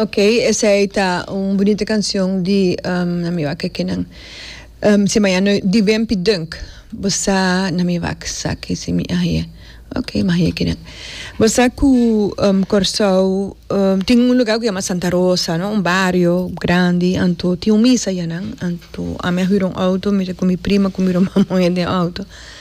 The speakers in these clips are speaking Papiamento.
Ok esey ta un bunita kancion di na mi wak eke nan si mañana di bempi dunk bo sa na mi wak saki si mi ahe ok mi ahe eke nan bo sa ku Kòrsou tin un luga ku yama Santa Rosa no un bario grandi anto tin un misa ya nan anto ami a hura un outo mester ku mi prima ku mi ruman moe den outo.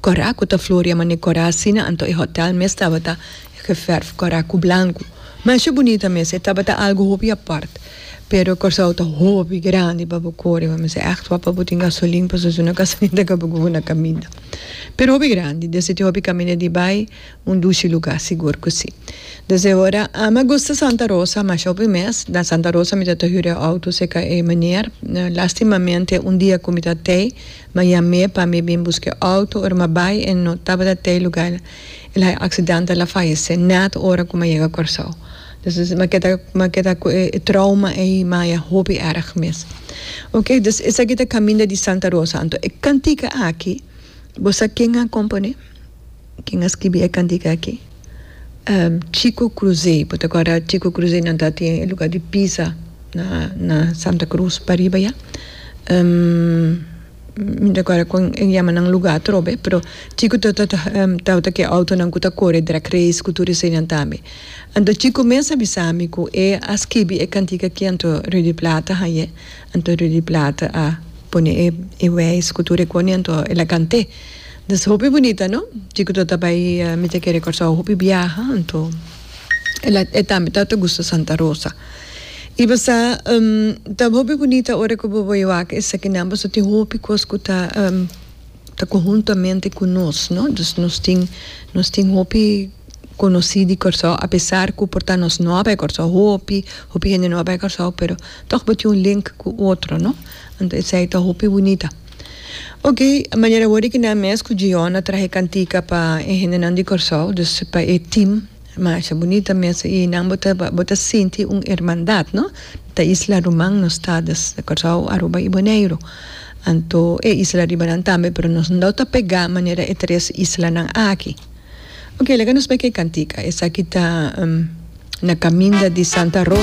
Cora cu ta floria mane cora asina anto e hotel mes tabata geverf cora cu blanco. Mesha bunita mes, e tabata algo hopi apart. Pero Corsou ta hopi grandi pa bo core bo mester echt wak pa bo tin gasolin paso esuna e casamento ca bo cubo na caminda. Pero hopi grandi, desde tin hopi caminda di bay, un dushi lugar sigur cu si. Desde ora ami a gusta Santa Rosa mesha hopi mes, na Santa Rosa mi tabata hura e auto cerca e meneer, lastimamente un dia cu mi ta tey, Ma yamé pa mi bin busk'é outo ora m'a bai en no tabata t'ei lugá el hai accidantal a fayesé nèt ora ku m'a yega Kòrsou. Dus es m'a keda m'a keda ku e trouma ei m'a ya hopi èrg mes. Ok dus esaki ta Caminda di Santa Rosa anto e kantika aki bo sa ken a komponé? Ken a skibi e kantika aki? Ehm, Chico Cruzé. Bo ta kòrda Chico Cruzé nan ta atien e luga di Pisa na, na Santa Cruz pariba ya? Ehm, mi no ta kòrda kon e yama nan luga atrobe, pero Chico ta, ta, ta, tabata ku e outonan ku ta kore drag race ku tur eseinan tambe. Anto Chico mes a bisa mi ku e a skibi e kantika aki anto Rudy Plata hañ'é, anto Rudy Plata a pone e, e wèis ku tur e kone anto el a kant'é. Dis hopi bunita no. Chico ta ta bay mi ta kere Kòrsou hopi biaha anto el a e tambe ta ta gusta Santa Rosa. I bo sa ta hopi bunita ora ku bo bo e wak esaki nan paso tin hopi kos ku ta ta konhuntamente ku nos no dus nos tin nos tin hopi konosí di Kòrsou apesar ku por ta nos no a bay Kòrsou hopi hopi hende no a bay Kòrsou pero tog bo tin un link ku otro no anto esei ta hopi bunita. Oke, manera awor di kina mes ku Jion a traha e kantika pa e hendenan di Kòrsou, dus pa e tim, masha bunita mes i nan bo ta bo ta sinti un hermandat, no? Ta isla ruman nos ta, dus Kòrsou, Aruba i Boneiru. Anto e isla ribanan tambe, pero nos no ta pegá manera e tres islanan aki. Oke, laga nos bai ku e kantika. Esaki ta na kaminda di Santa Ro.